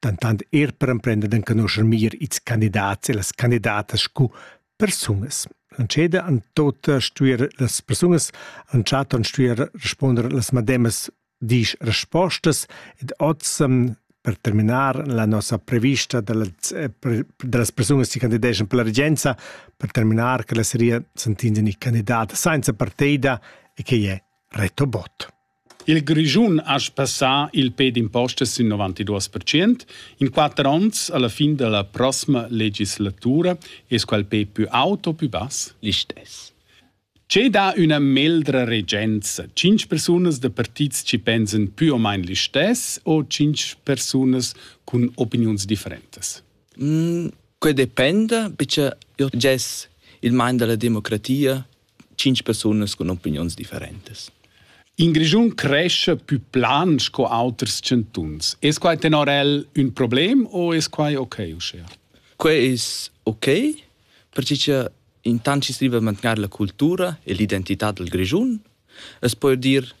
dentant er per emprender d'enconuscher meglier ils candidats e las candidatas sco persunas. L'entscheda han tota stuer las persunas, l'entschaton stuer responder las mademas disch respostas ed oz ehm, per terminar la nossa prevista dallas, eh, dallas persunas che candideschan per la regenza, per terminar che la seria sentinzia ni candidata senza partida e che è reto bot. Il Grischun ha sbassà il pe d'impostas sin 92 percent in quatter onns alla fin dalla prossima legislatura es quel pe plü aut o plü bass? Listess. Che dà üna meldra regenza? Cinc persunas da partits ci pensan plü o main listess o cinc persunas cun opiniuns differentas? Mm, que dependa, perche io gess il man da la democratia tschintg persunas cun opiniuns differentas. In Grischun cresce più plan sco auters chantuns. Es quai tenor el ün problem o es quai okay uschea? Quai es okay, perche cha intant chi striva a mantgnar la cultura e l'identità dal Grischun, es poch dir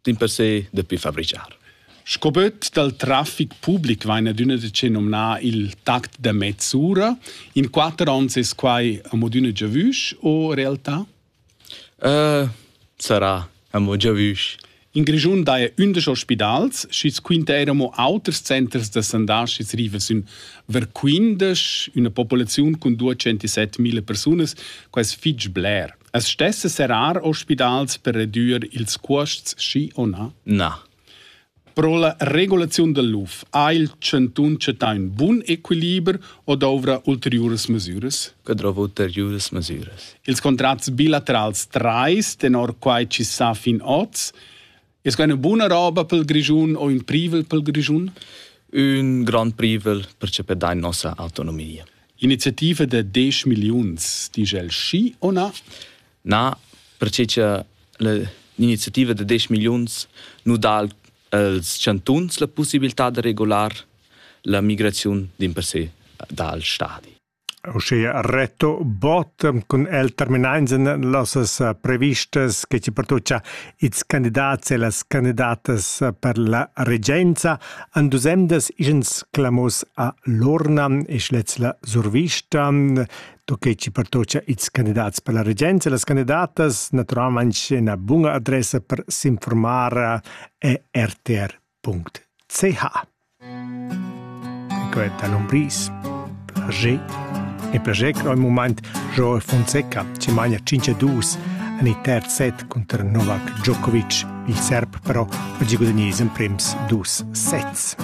dimpersè dapi fabricar. Sco böt dal traffic public vain adüna decè nomnà il tact da mezz'ura. In quatter ons es quai amo adüna giavüsch o realtà? Uh, sarà amo giavüsch. In Grischun daja ündesch ospidals, schi's quinta eir amo auters centers da sandar schi's riva sün ver quindesch, üna populaziun cun 207.000 persunas, quai es fich bler. As stesse serrar ospidals per redüer ils cuosts, schi o na? Na. Pro la regulaziun del luf ha il chantun chattà ün bun equiliber o dovrà ulteriuras mesüras? Que dovra ulteriuras mesüras. Ils contrats bilaterals trais, tenor quai chi sa fin oz, Es que üna buna roba pel Grischun o ün privel pel Grischun? Ün grand privel percepir da nossa autonomia. Iniziativa da 10 miliuns, dice el schi o na? Na, perché che l'iniziativa da 10 miliuns nu dà als chantuns la possibilità da regolar la migraziun din per se dal stadi. Uschia Reto Bott cun el terminainsan nossas previstas che chi pertuocha ils candidats e las candidatas per la regenza han duos emdas ischens clamos a l'urna e's lets la survista do che chi pertuocha ils candidats per la regenza e las candidatas natüralmaing üna buna adressa per s'informar e RTR. .ch. Quenta l'umbris. Plascher. E plascher che al mumaint Joe Fonseca ci magna 5-2 en il terz set contro Novak Djokovic. Il serb però oggi guadagna in prems dus sets.